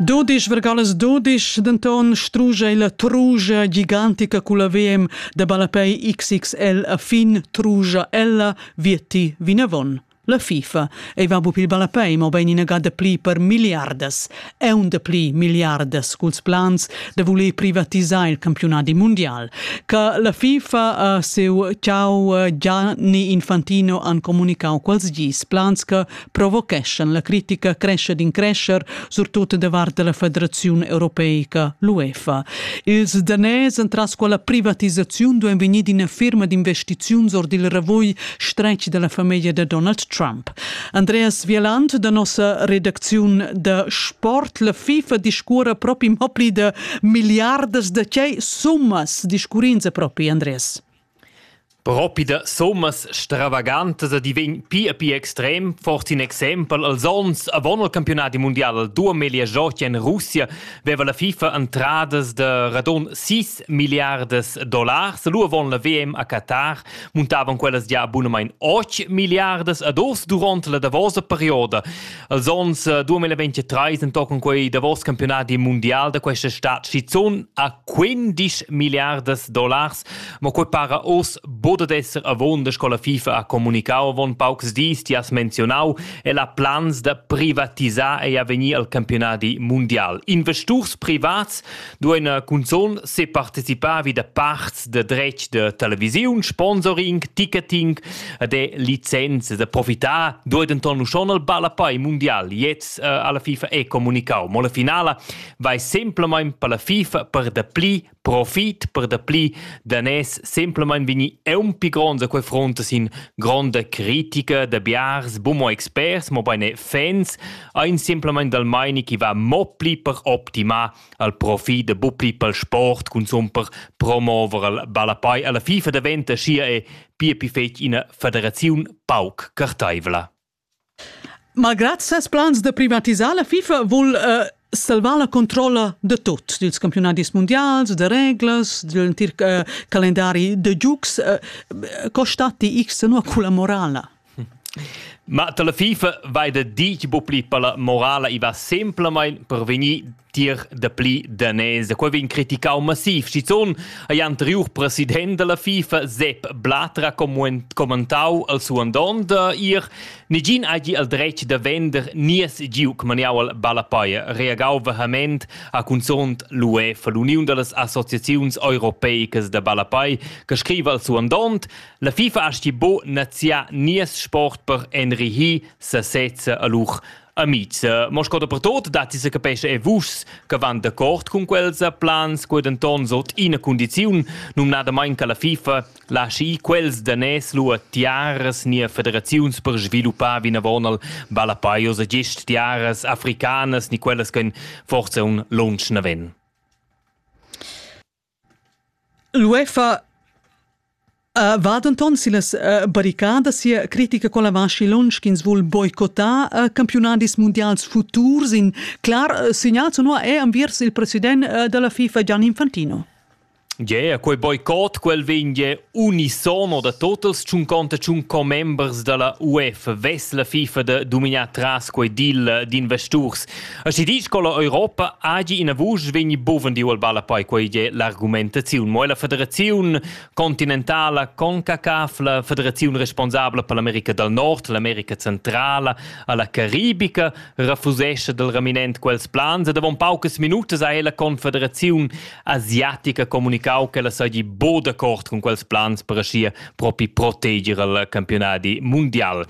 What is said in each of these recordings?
Dodisch vergalas dodisch, denton struge la trugia gigantica culla VM de ballapei XXL a fin trugia ella vietti vinavon. La FIFA ei va bu pil ballapei, mo bein ina ga de pli per milliardas, un de pli milliardas culs plans de voler privatisar il campionati mondial. Ca la FIFA a seu ciao Gianni Infantino han comunicau quals gis plans che provocheschan la critica crescia d'increscher, surtut davart la Federaziun Europeica, l'UEFA. Ils danès entras quella privatisaziun duein vegnir d'ina firma d'investiziuns or dil ravugl stretg dalla famiglia da Donald Trump. Andreas Wieland da nossa redacziun da sport, la FIFA discurra propi mo pli da milliardas da tgei summas discurrins propi, Andreas? Propi da summas stravagantas ed i vegn pia pia extrem, forsa in exempel. Els onns avon il campiunadi mundial al duameglia giochi en Russia veva la FIFA entradas da radon 6 milliardas dollars. Lu avon la VM a Qatar muntavan quellas gia abunamain 8 milliardas ad urs duront la davosa perioda. Els onns 2023 entochen quei davos campiunadi mundial da questa stad schizun a 15 milliardas dollars Mo quei para oz bod ad esser avunda sco la FIFA ha communicau avon paucs dis, ti has menzionau, el ha plans da privatisar e avegnir al campionadi mundial. Investurs privats duein eh, cunzun separticipavi da parts de dretg de televisiun, sponsoring, ticketing eh, de licenze da profitar dueiden ton schon al ballapei mundial. Jetzt eh, alla FIFA e comunicau. Mo la finala vai semplamein per la FIFA per dapli profit per dapli danès semplamein vegni eunpi gronds a quei front sin gronda critica da biars bumo experts, mobein e fans, ein semplamein dal meini chi va mo pli per optimar al profit da bu pli pel sport consum per promover al ballapei alla FIFA daventa scia e pia pi fetg ina federaziun pauc carteivla. Malgrad ses plans da privatisar la FIFA vul uh, salvar la controlla da tut, dils campiunadis mundials, da reglas, dell'entir uh, calendari da giugs. Uh, co statti x senua con la morala? Ma la FIFA vai da dir bucli per la morala i va semplamain per vegnir tier dapli daners. Da quei vegn criticau massiv. Schizun ei anteriur president della FIFA Sepp Blatter commentau al suo andond ir Negin hagi al dretg da vender nies giuc maniau al Ballapaia, reagau vehement a cunzont l'UEFA, l'Uniun dallas Associaziuns Europeicas da Ballapai, che scriva al suo andond La FIFA asti bo nazià nies sport per enrihir sasezza a lur Amics, mo sco dapertot datti se capesce e vus che van d'accord con quels plans, quei denton sot ina condiziun, numnadamain che la FIFA lasci quels da nes lu a tiaras nia federaziuns per sviluppar vinavon al Valapaios e gest tiaras africanas ni quellas che forse un lunsch naven. L'UEFA uh, va denton sillas uh, barricadas sia critica con la vaschi lunsch ch'ins vul boicottar uh, campionadis mundials futurs. In clar uh, segnal sonor è enviers il president uh, della FIFA Gian Infantino. Yeah, quei boicot quel veglie Unisono da totals tschunconta tschun commembers dalla UEFA vess la FIFA da dominar tras quei deal d'investurs. Aschi disch con la Europa agi ina vusch vegni buvendiu al ballapoi quei è l'argumentaziun. Mo la federaziun continentala CONCACAF, la federaziun responsabla per l'America dal Nord, l'America Centrala alla Caribica refusesce dal raminent quels plans ed avon paucas minutas ha ella confederaziun asiatica comunicau ch'ella seigi bo d'accord cun quels plans per aschia propi proteger il campionadi mundial.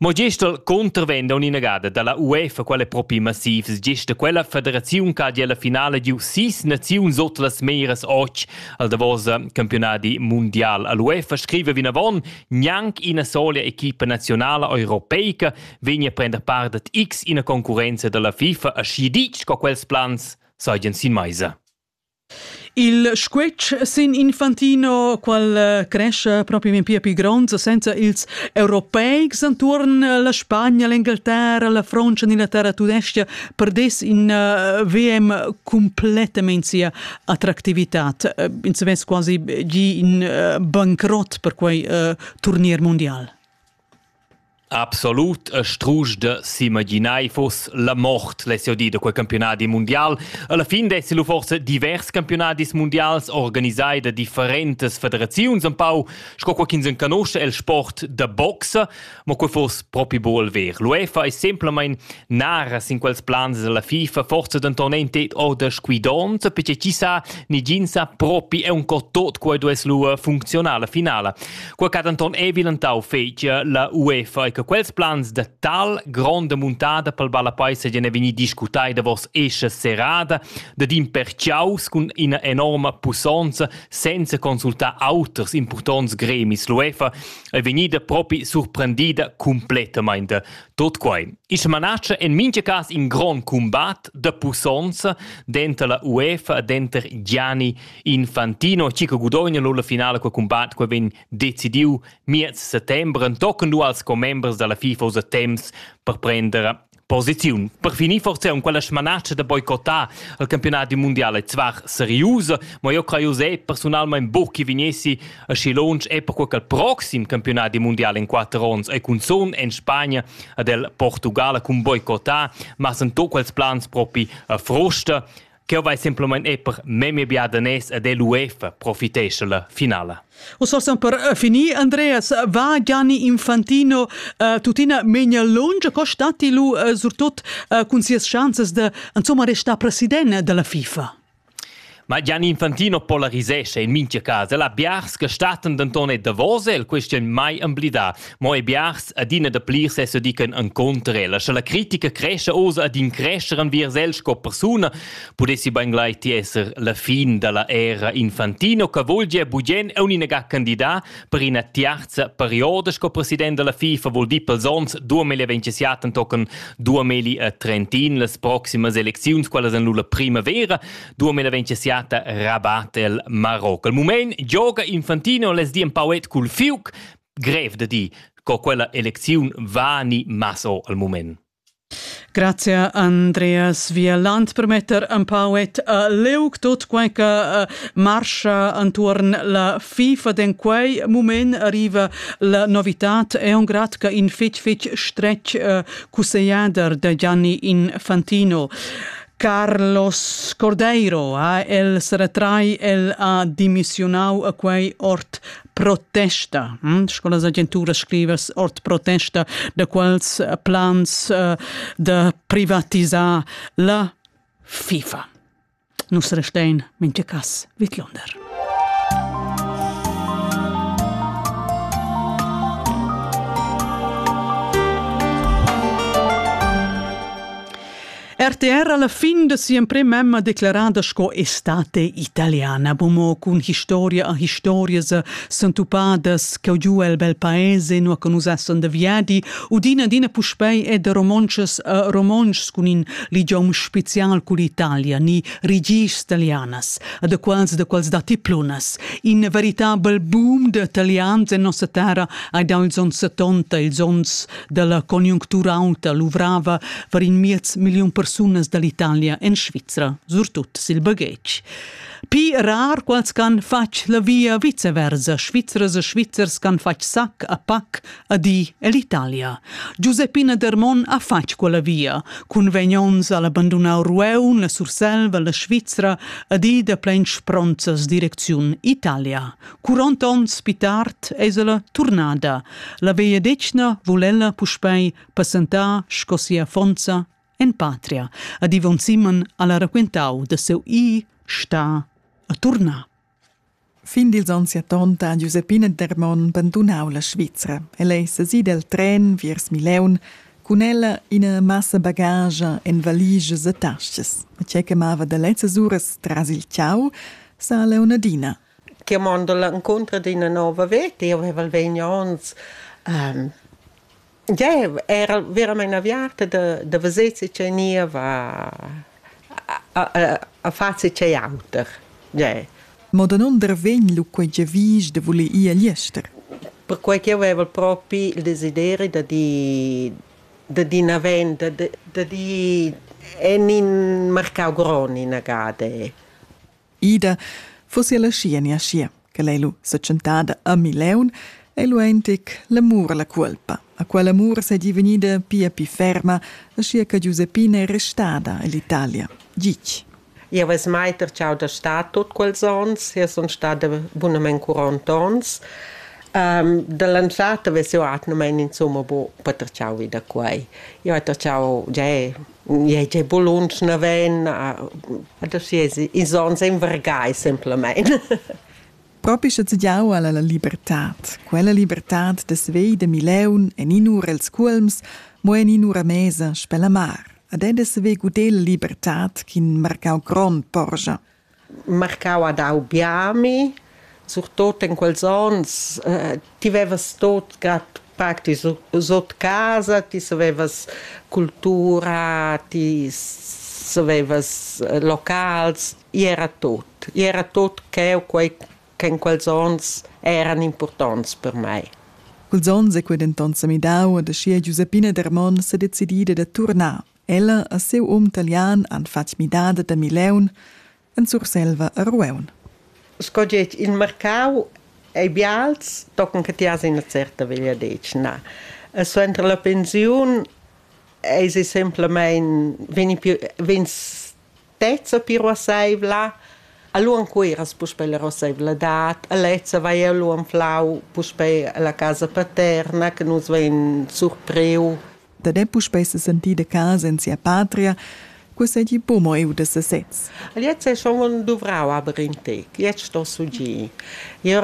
Mo gest il contravent a un'inagada dalla UEFA quella propi massivs gest da quella federaziun che ha gia la finale giu sis naziuns ot las meras och al davos campionadi mundial. L'UEFA scrive vinavon gnanc ina sola equipa nazionala europeica vegna a prender part ad x ina concurenza dalla FIFA a schi ditg co quels plans seigien sin meisa. Il squetsch sin Infantino, qual eh, cresce proprio in pia più gronds senza ils europeics anturn la Spagna, l'Inghilterra, la Francia, l'Inghilterra tudestia, perdes in uh, VM completamente sia attractività. Eh, in se quasi gi in uh, bankrott per quei uh, turnier mondial. Absolut e strusch da s'imaginar fuss la mort less jau dir da quei campiunadi mundial. Alla fin dessi lu forsa divers campiunadis mundials organisai da differentas federaziuns un pau, sco quei ch'ins enconusce el sport da boxa, ma quei fuss propi buol ver. L'UEFA è semplamein naras in quels plans dalla FIFA, forse denton ein tet orda squidonta, perché chi sa, ni gin sa propi è un cot tot quei duess lu funzionar la finala. Qua ch'ha denton ei bilentau fetgia la UEFA e che quels plans da tal gronda muntada pel ballapai seigien vegni discutai davos escha serrada dad in pertgiaus cun ina enorma pussonza senza consultar auters impurtonts gremis. L'UEFA è vegnida propi surprendida completamente. Tot quai. Ich manace in mincha cas in grond combat de pussonza denter la UEFA e denter Gianni Infantino Chico gudogna lur la finala quel combat quel vegn decidiu miez settembre entochen du als commembers dalla FIFA usa temps per prender posiziun. Per finir forse un quella smanatscha da boicotar il campionat du mondiale zwar seriusa, ma io craiu se personalmente buc che vegnessi a Schilonch e per quel proxim campionat du mondiale in quattro ons e cun son en Spagna ad el Portugala cun boicotar, ma sen to quels plans propi a frusta. Ch'eu vai simplamaing e per memia bia daners ed l'UEFA profitescha la finala. Us forsa per uh, finir, Andreas, va Gianni Infantino uh, tuttina meglio lunge, co stati lu uh, surtut uh, cun sias chanzas de insomma restare president della FIFA? Ma Gianni Infantino polarisesce in minchia casa. La biars che staten denton e davos el, questien mai emblidà. Mo e biars adina da pli se se dican encontr ella. Sche la critica cresce oz ad in crescer enviers el sco persuna, pudessi ben glai ti esser la fin dalla era infantino che vogl gia bugen e uninaga candidat per ina tiarza perioda sco president della FIFA vuol dir pels ons 2027 tochen 2030 las proximas elecziuns qualas en la primavera 2027 rabat el Marocco. Al moment gioga Infantino les di un pauet cul Fiuc grev da dir co quella elecziun va ni masso al moment. Grazie a Andreas Vierland per metter un pauet a leuc tot quai che uh, marcha antuorn la FIFA den quei moment arriva la novitat è un grad che in fitch fitch stretch uh, cussegliader da Gianni Infantino Carlos Cordeiro, eh, el se retrai, el ha dimissionau a quei ort protesta, hm? sco las agenturas scrivas, ord protesta da quels eh, plans uh, da privatisar la FIFA. Nus restein minche cas vidlunder. RTR alla fin da si'emprema emma declarada sco estate italiana, bomo cun historia a historias sentupadas che giu el bel paese nu che nus essan da viadi, udina dina puspei e da romontschas a romontschs cun in ligiom special cu l'Italia, ni rigis italianas, da quals da quals datti plunas. In veritabel boom da italians en nossa terra hai dau ils ons 70, ils ons dalla conjunctura aunta luvrava var in miez million persunas dall'Italia en Svizra, surtut sil baghetg. Pi rar quals can fatg la via viceversa, Svizras e Svizzers can fatg sac a pac a diell'Italia. Giuseppina Dermon ha fatg quella via, cun vegnons al abandonau Rueun, la Surselva, la Svizra, a di da plensch pronzas direcziun Italia. Curont onns pi tard es ella turnada. La vegliadetgna vul ella puspei passentar sco sia fonza en patria. Ad Ivan Simon alla raquentau da seu i sta a turnar. Fin dils onns 70 ha Giuseppina Dermon bandunau la Svizra. El ei sesi del tren viers Mileun cun ella ina massa bagage en valiges e tasches. E tge che mava da lezzas uras tras il ciao sa Leonardina Chi ha mando l'incontro d'üna nouva veta. Eu vaiva vegni ons già era veramaing aviarta da da veser che ch'eu gniva a far che ch'ei auter. Già. Mo danunder vegn lu quei giavisch da voler ir agl ester? Perquai ch'eu vaiva propi il desideri da dir da dir üna venda, da dir en in marcau grond inagada. Ida fussi ella schi en schier, che lei lu setschentada a Mileun, ei lu eintic l'amur alla cuolpa, a quell'amur seigi vegnida pia pli ferma, aschia che Giuseppina è restada ell'Italia. Gitg. Jau ves mai tertschau da star tut quels onns, jau sun stada bunamain quarant onns. Um, da l'anzata ves jau atgnamain insumma bu per tertschau vi da quai. Jau hai tertschau gia Ei ei buluns naven, adesso ils onns ein vargai semplamein. Propi sche tgiau alla la libertad. Quella libertad dess vei de Mileun en in'ura els cuolms, mo en in'ura mesa spella mar. Ad ed dess vei gudel libertad ch'in marcau grond porscha. marcau ad Aubiami, surtot in quels onns, ti vevas tot grad pac, ti sot casa, ti savevas cultura, ti savevas locals, igl era tot, igl era tot cheu, quei che in quels onns eran impurtonts per mei. Quels onns ei quei denton semidau, ad aschia Giuseppina Dermon sedecidi da turnar Ella e siu um talian han fatg midada da Mileun en Surselva a Rueun. Sco getg il marcau ei bials, tochen che ti has ina certa vegliadetgna. E suenter la pensiun eisi semplamein vegni, vegns lezza piruasseivla, allura cueras puspei la rosseivladad, e lezza vai lu anflau puspei alla casa paterna, che nus vein surpriu. Dat ei puspei sesentir de casa en sia patria, quei seigi buca mo eu de sesez. Jetzt è schon duvrau aber in tec. Jetzt sto su gi. Io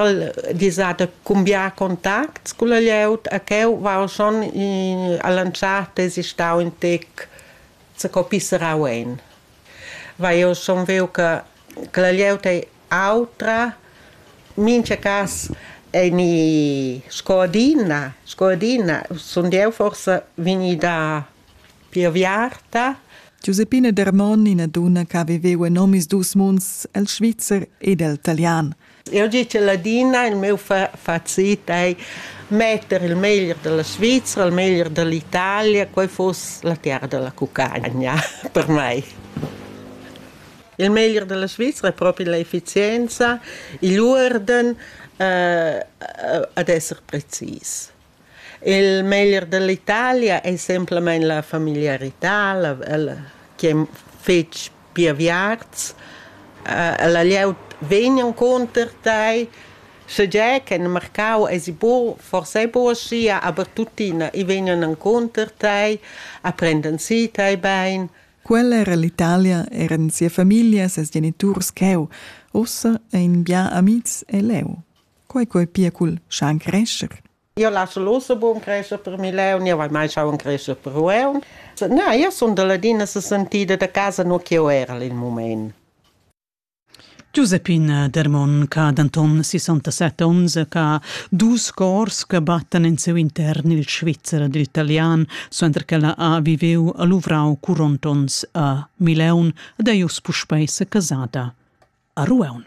disate cumbia contacts con la lieut a cheu va schon in, a lanciate si stau in tec Co pisserau ein? Vai, jeu sun viu che che la glieud ei autra. Mincha cas ei ni sco adina, sco adina sund jeu forsa vegnida pli aviarta. Giuseppina Dermon, ina dunna che ha viveu en omisdus munds, el svizzer ed el talian. Eu di che ladina, il meu facit ei metter il meglier della Svizzera, il meglier dell'Italia, quei foss la terra della cucagna per mei. Il meglier della Svizzera è proprio l'efficienza, igl urden, eh, ad esser precis. Il meglier dall'Italia ei semplamein la familiarità, la, la, chi ei fetg pia viarts. Ella glieud vegn encunter tei, schegie che in marcau esi buc, forsa ei buc aschia, aber tuttina, i vegnan encunter tei, e prendan si tei bein. Quella era l'Italia, eran sia famiglia, ses geniturs cheu. Ussa ein bia amitgs e leu. Quei quei pia cul schan crescher. Io lasso l'osso buon crescer per Mileu, io vai mai schauen crescer per Rueun. Na, io sun da ladina se sentida da casa no che era il moment. Giuseppina Dermon, ch'ha denton 67 onns, ha dus cors che battan in seu intern il Svizzer ed l'italian, suenter ch'ella ha viveu a Luvrau curont ons a Mileun ed è uss puspei secasada a Rueun.